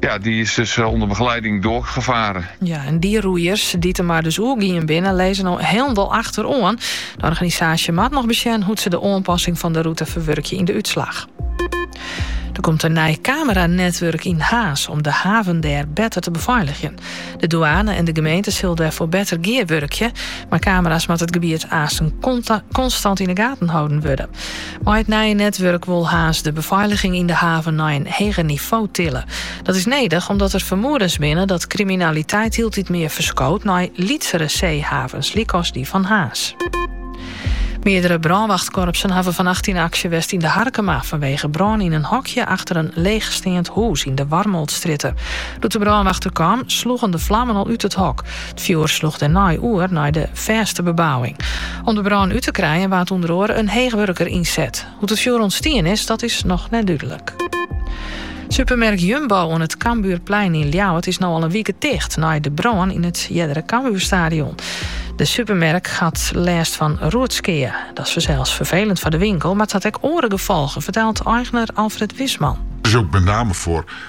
Ja, dy is dus eh, ûnder begeleiding doargefaren. Ja, en dy roeiers, dy't de mar dus oergien binne, lizze no hielendal achteroan. De organisaasje moat noch besjen hoe't se de oanpassing fan de rûte ferwurkje yn de útslach. Der komt in nij kameranetwurk yn Harns om de haven dêr better te befeiligjen. De dûane en de gemeente sille dêrfoar better gearwurkje. Mei kamera's moat it gebiet aansten konstant yn de gaten holden wurde. Mei it nije netwurk wol Harns de befeiliging yn de haven nei in heger nivo tille. Dat is nedich omdat der fermoedens binne dat kriminaliteit hieltyd mear ferskoot nei lytsere seehavens, lykas dy fan Harns. Meardere brânwachtkorpsen hawwe fannacht yn aksje west yn De Harkema fanwege brân yn in hokje achter in leechsteand hûs yn de Warmoltsstrjitte. Doe't de brânwacht der kaam, sloegen de flammen al út it hok. It fjoer sloech dêrnei oer nei de fêste bebouwing. Om de brân út te krijen waard ûnder oare in heechwurker ynset. Hoe't it fjoer ûntstien is, dat is noch net dúdlik. Supermerk Jumbo oan it Cambuurplein yn Ljouwert is no al in wike ticht nei de brân yn it eardere Cambuurstadion. De supermerk hat lêst fan roetskea. Dat is fansels ferfelend foar de winkel, mar it hat ek oare gefolgen, fertelt eigner Alfred Wisman. It is ook met name foar